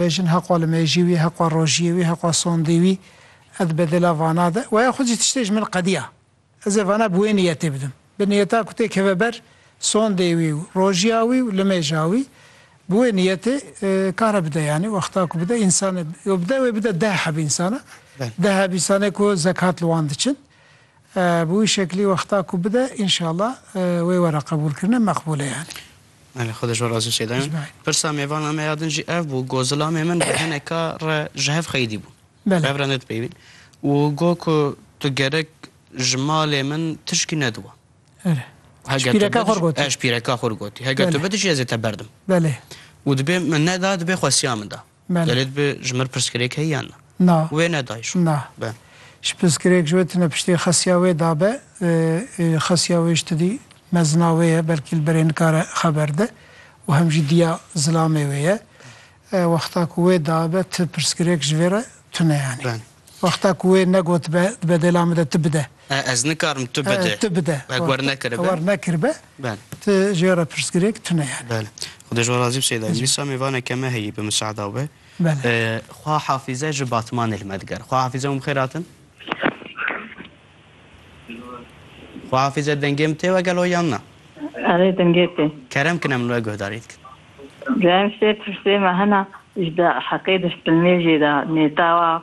Bejin heqwa li mêjî wî, heqwa rojiyê wî, heqwa sondê wî. Ez di bedêla vana de waya xwe jî tiştê ji min qediya. Ez ê vana bi wê niyetê bidim. Bi niyeta ku tê keve ber sondê wî û rojiya wî û limêja wî. Bi wê niyetê kare bide yanî wexta ku bide însan e yo bide wê bide deh heb însan e. Deh heb însan ê ku zekat li wan diçin. Bi wî şeklî wexta ku bide înşallah wê were qebûlkirine meqbûl e yanî. Belê xwe dijwar ez jî sê dayim. Pirsa mêvana me ya din jî ev bû ku zilamê min bi hineka re ji hev qeydî bû. Belê. Ev re ne dipeywîn. Û got ku tu gerek ji malê min tişkî nediwa. Belê. Ji pîreka xwe re gotî. Ji pîreka xwe re gotî. Heger tu bidijî ez ê te berdim. Belê. Û dibê min neda dibê xwesiya min da. Gelê dibe ji mir pirsgirêk heye yan na? Na. Wê nedaye şo? Na. Be. Ji pirsgirêk ji wê tune piştê xesiya wê dabe, xesiya wê ji tidî mezina wê ye, belkî li berê nikare xeber de û hem jî diya zilamê wê ye. Wexta ku wê dabe ti pirsgirêk ji vê re tune yanî. Wexta ku wê negotibe dibe dêla min de ti bide. Ez nikarim tu bide. Tu bide. Ev wer nekiribe. Wer nekiribe. Bel. Tu jê re pirsgirêk tune yani. Bel. Xwedê ji we razî bi Seyda. Dîsa mêvaneke me heyî bi miseada we. Bel. Xwa hafize ji Batmanê li me diger. Xwa hafize hûn bi xêr hatin. Xwa hafize dengê min tê we gelo yan na? Erê dengê tê. Kerem kine min we guhdarî dikin. Gel ştê pirsê me hena ji heqê destpilnêjê de nêtawa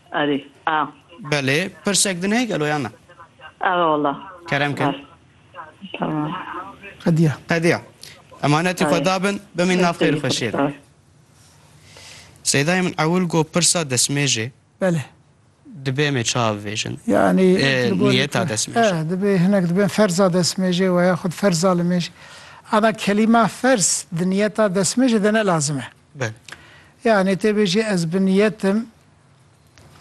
Erê a. Belê pirsek din heye gelo yan na. Eve wala. Kerem kin. Var. Tamam. Qediya. Qediya. Emanetê xwe dabin bimîn nav xêr û xweşiyê de. Seydayê min ewil got pirsa desmêjê. Belê. Dibe em ê ça bivêjin? Yanî niyeta desmêjê. E, dibe hinek dibin ferza desmêjê we ya xud ferza li mêj. Ana kelîma ferz di niyeta desmêjê de ne lazim e. Belê. Yanî tê bêjî ez bi niyetim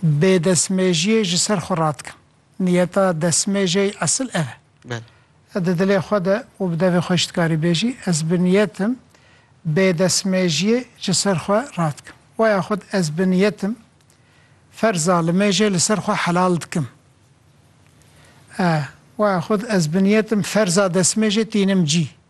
bêdestmêjiyê ji ser xwe radikim. Niyeta destmêjê esil ev e. Belê. Di dilê xwe de û bi devê xwe jî dikarî bêjî ez bi niyetim bêdestmêjiyê ji ser xwe radikim. We ya xwe ez bi niyetim ferza li mêjê li ser xwe helal dikim. We ya xwe ez bi niyetim ferza destmêjê tînim cî.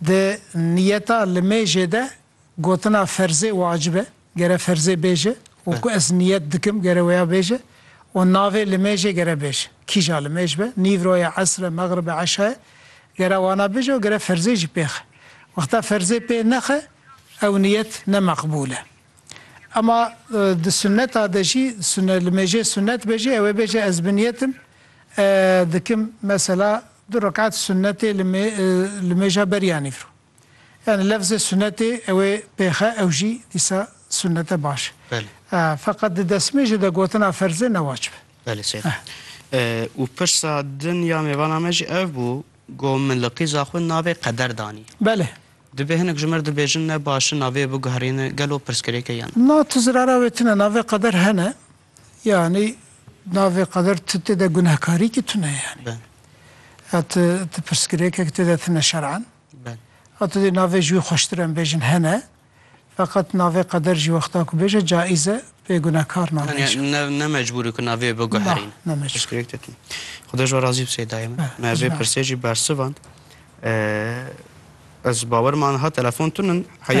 Di niyeta li mêjê de gotina ferzê wacib e, gere ferzê bêje, û ku ez niyet dikim gere wêya bêje, û navê li mêjê gere bêje, kîja li mêj be, nîvro ye, esr e, mexrib e, eşa ye, gere wana bêje û gere ferzê jî pê xe. Wexta ferzê pê nexe ew niyet ne meqbûl e. Ema di sunneta de jî sunne li mêjê sunnet be jî ew ê bêje ez bi niyetim dikim mesela du rekat sunnetê li mê li mêja beriya nîvro. Yani lefzê sunnetê ew ê pêxe ew jî dîsa sunnete baş e. Belê. Feqet di destmêjê de gotina ferz e ne wacib e. Belê sey. Û pirsa din ya mêvana me jî ev bû go min li qîza xwe navê qeder danî. Belê. Dibê hinek ji me re dibêjin ne baş in navê biguherîne gelo pirsgirêk e yan? Na tu zirara wê tune navê qeder hene yanî navê qeder tu têde gunehkarîkî tune yanî Bel. ya tu tu pirsgirêkek têde tune şer'an Bel. ya tu dê navê ji wî xweştir em bêjin hene Feqet navê qeder jî wexta ku bêje caiz e, pê gunekar nabêje. Tanya ne ne mecbûr e ku navê biguherîn. Nah, ne mecbûr. Piştgirêk te tîn. Xweda ji we razî bi sey dayê min. Be, Me ez vê pirsê jî bersivand. Ez bawer man ha telefon tun in heya.